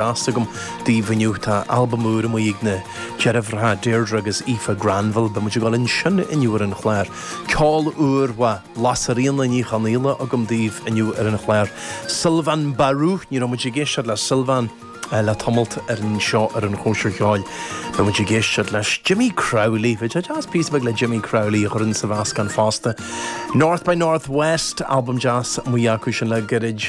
deas agam daoibh inniu. Tá albam úr amuigh ag na deirfiúracha Deirdre agus Aoife Granville. Beidh muid ag dul ansin inniu ar an chlár. Ceol úr ó Lasairfhíona Ní Chonaola agam daoibh inniu ar an chlár. Sylvain Barou, ní raibh muid ag éisteacht le Sylvain le tamalt anseo ar an Chóisir Cheoil. Beidh muid ag éisteacht leis. Jimmy Crowley, bheadh sé deas píosa beag le Jimmy Crowley a chur ins sa mheascán fosta. North by Northwest, albam deas amuigh acu sin le gairid.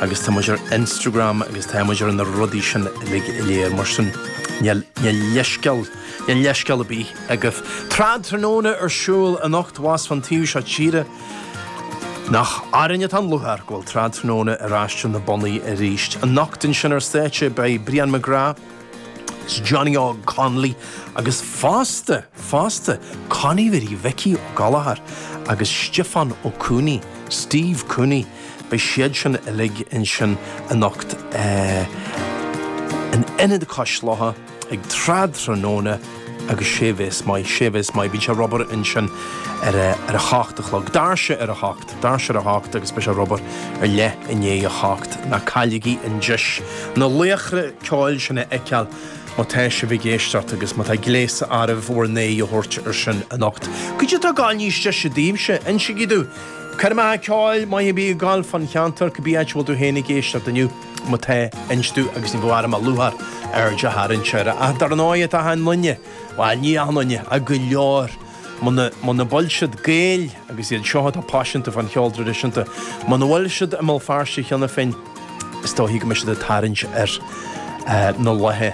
agus tá muid ar Instagram agus tá muid ar na rudaí sin uilig go léir mar sin níl leithscéal níl leithscéal ar bith agaibh. Trad Tráthnóna ar siúl anocht abhus fán taobh seo tíre nach orainn atá an lúcháir go bhfuil Trad Tráthnóna ar ais ar na bonnaí arís. Anocht ansin ar stáitse beidh Brian McGrath, Is Johnny Óg Connolly agus fosta, fosta, Connie Mhary Mhicí Ó Gallchóir agus Stiofán Ó Cuanaigh, Steve Cooney, beidh siad sin uilig ansin anocht in Ionad Cois Locha ag Trad Tráthnóna agus sé a bheas maith, sé a bheas maith, beidh sé ar obair ansin ar a hocht a chlog, doirse ar a hocht. doirse ar a hocht agus beidh sé ar obair ar leath i ndiaidh a hocht ná cailligí an deis na laochra ceoil sin a fheiceáil má tá sibh ag éisteacht agus má tá gléas oraibh bhur n-aghaidh a thabhairt air sin anocht. Cad é atá ag gabháil níos deise daoibhse, insigí domh! Coirmeacha ceoil maith ar bith ag dul fán cheantar cibé áit a bhfuil tú féin ag éisteacht inniu má tá inis domh agus ní bheadh orm ach lúcháir aird a tharraingt air ach dar ndóigh tá achan duine, bhuel ní achan duine, ach go leor! Muna bhfuil siad Gaeil, agus iad seo atá paiseanta fán cheol traidisiúnta, muna bhfuil siad i mBéal Feirste cheana féin, is dóichí go mbeidh siad ag tarraingt air na laethe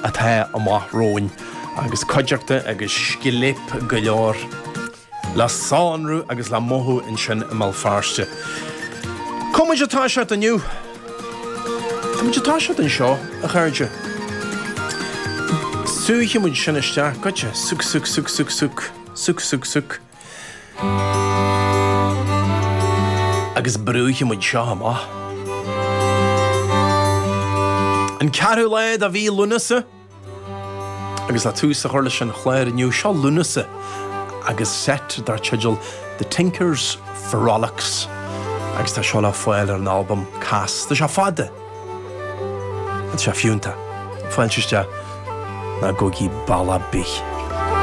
atá amach romhainn agus cuideachta agus scléip go leor le sonrú agus le mothú ansin i mBéal Feirste. Cá mhéad atá sé inniu? Cá mhéad atá sé anseo, a chairde. Sáithfidh muid sin isteach go dtí. Suigh, suigh, suigh, suigh, suigh. Suigh, suigh, suigh. Agus brúfaidh muid seo amach. An ceathrú lá de mhí Lúnasa. Agus le tús a chur leis an chlár inniu, seo Lúnasa agus seit dar teideal The Tinkers Frolics agus tá seo le fáil ar an albam Cas. Tá sé fada agus tá sé fiúntach. Fáilte isteach ná gabhaigí bealach ar bith.